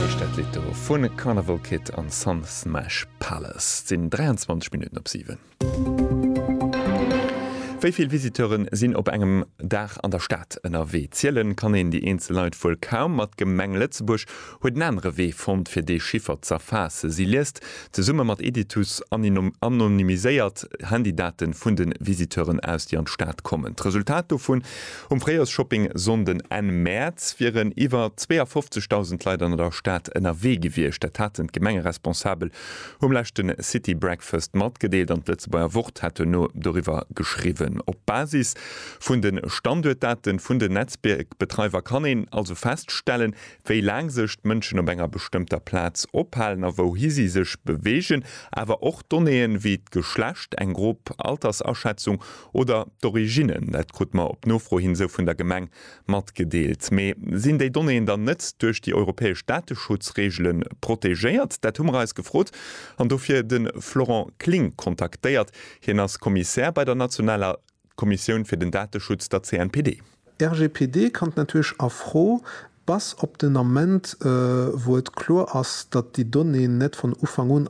heescht dat Lidd do vu Carnival Kid an Sun Smash Palace. Et sinn 23 Minutten op 7. Wéi vill Visiteuren sinn op engem Dag an der Stad ënnerwee? Zielen kann een déi eenzel Leit wuel kaum, ma d'Gemeng Lëtzebuerg huet en anere Wee fonnt fir dee Chiffer z'erfaassen. Si liest zesumme mat Editus anonymiséiert Handydaten vun de Visiteuren aus, déi an d'Stad kommen. D'Resultat dovun Um Fréijoersshopping Sonnden, Enn Mäerz, wieren iwwer 52.000 Leit an der Stad ënnerwee gewiescht. Dat haten d'Gemengeresponsabel um leschte City Breakfast matgedeelt an d'Lëtzebuerger Wort hat duerno doriwwer geschriwwen. Op Basis vun de Standuertdate vun den Netzbiergbetreiwer kann een also feststellen, wéi laang sech d'Mënschen op enger bestëmmter Plaz ophalen a wouhi si sech beweegen, awer och Donnéeë wéi d'Geschlecht, eng grob Altersaschätzung oder d'Origine. Dat krute mer op Nofro hin esou vun der Gemeng matgedeelt. Mee sinn déi Donnéeën dann net duerch déi europäesch Dateschutzregele protegéiert? Dat hu mer eis gefrot an dofir de Florent Kling kontaktéiert. Hien ass Kommissär bei der nationaler. D'Kommissioun fir den Dateschutz, der CNPD. RGPD kann d'Natuerg a Fro, bass op den Ament wou et kloer ass, datt déi Donnéeën net von Ufank un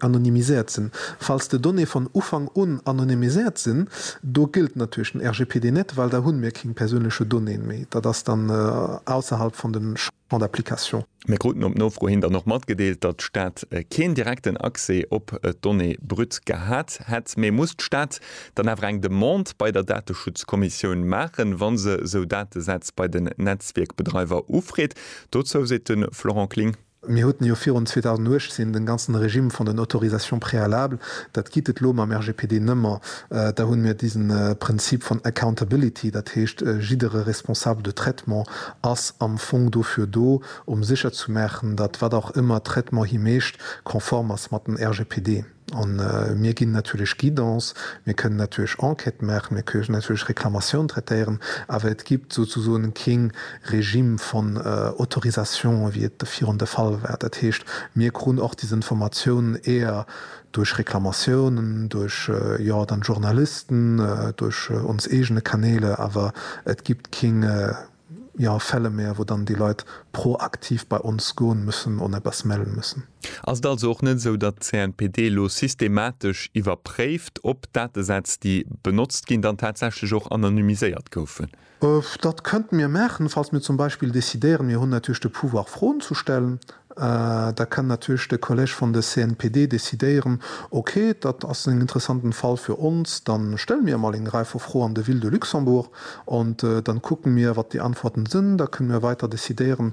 anonymiséiert sinn. Falls de Donnéeë von Ufank un anonymiséiert sinn, do gëllt natierlech den RGPD net, well da hunn mir kéng persounleche Donnéeën méi. Dat ass dann ausserhalb von den. Champ d'application. Mir kruten op Nofro hin dann och matgedeelt, datt d'Stad keen direkten Accès op d'Donnée brute gehat hätt, mee muss d'Stad dann awer eng Demande bei der Dateschutzkommissioun maachen, wa se esou Datesätz bei den Netzwierkbedreiwer ufreet? Dozou seet de Florent Kling. Mir hueten jo virun 2018 den ganzen Régime vun den Autorisations préalables, dat gitt et elo mam RGPD nëmmer. Da hunn mir disen Prinzip vun accountability, dat heescht jiddere responsable de traitement ass am Fong dofir do, um sécher ze maachen, datt wat och ëmmer Traitement hie mécht, konform ass mat den RGPD. A mir ginn natierlech Guidance, mir kënnen natierlech Enquête maachen, mir kënnen natierlech Reklamatioun traitéieren, awer et gibt souzesoen kee Regime von Autorisation, wéi et virun de Fall war. Dat heescht, mir krun och des Informatiounen, éier duerch Reklamatiounen, duerch, jo, dann d'Journalisten, duerch ons eegene Kanäle, awer et gibt keng, jo, Fälle mehr, wou dann déi Leit proaktiv bei ons goen müssen an eppes mellen müssen. Ass et also och net esou, datt d'CNPD elo systematesch iwwerpréift, ob d'Datesätz, déi benotzt ginn, dann tatsächlech och anonymiséiert goufen? Dat könnten mir maachen, falls mir zum Beispill décidéieren, mir hunn natierlech de Pouvoir Froen ze stellen, da kann natierlech de Kolleg vun de CNPD décidéieren, ok, dat ass en interessanten Fall fir ons, da stelle mir emol eng Rei vu Froe an de Ville de Luxembourg an da kucken mir wat déi Antworten sinn, da kënnen mir weider décidéieren.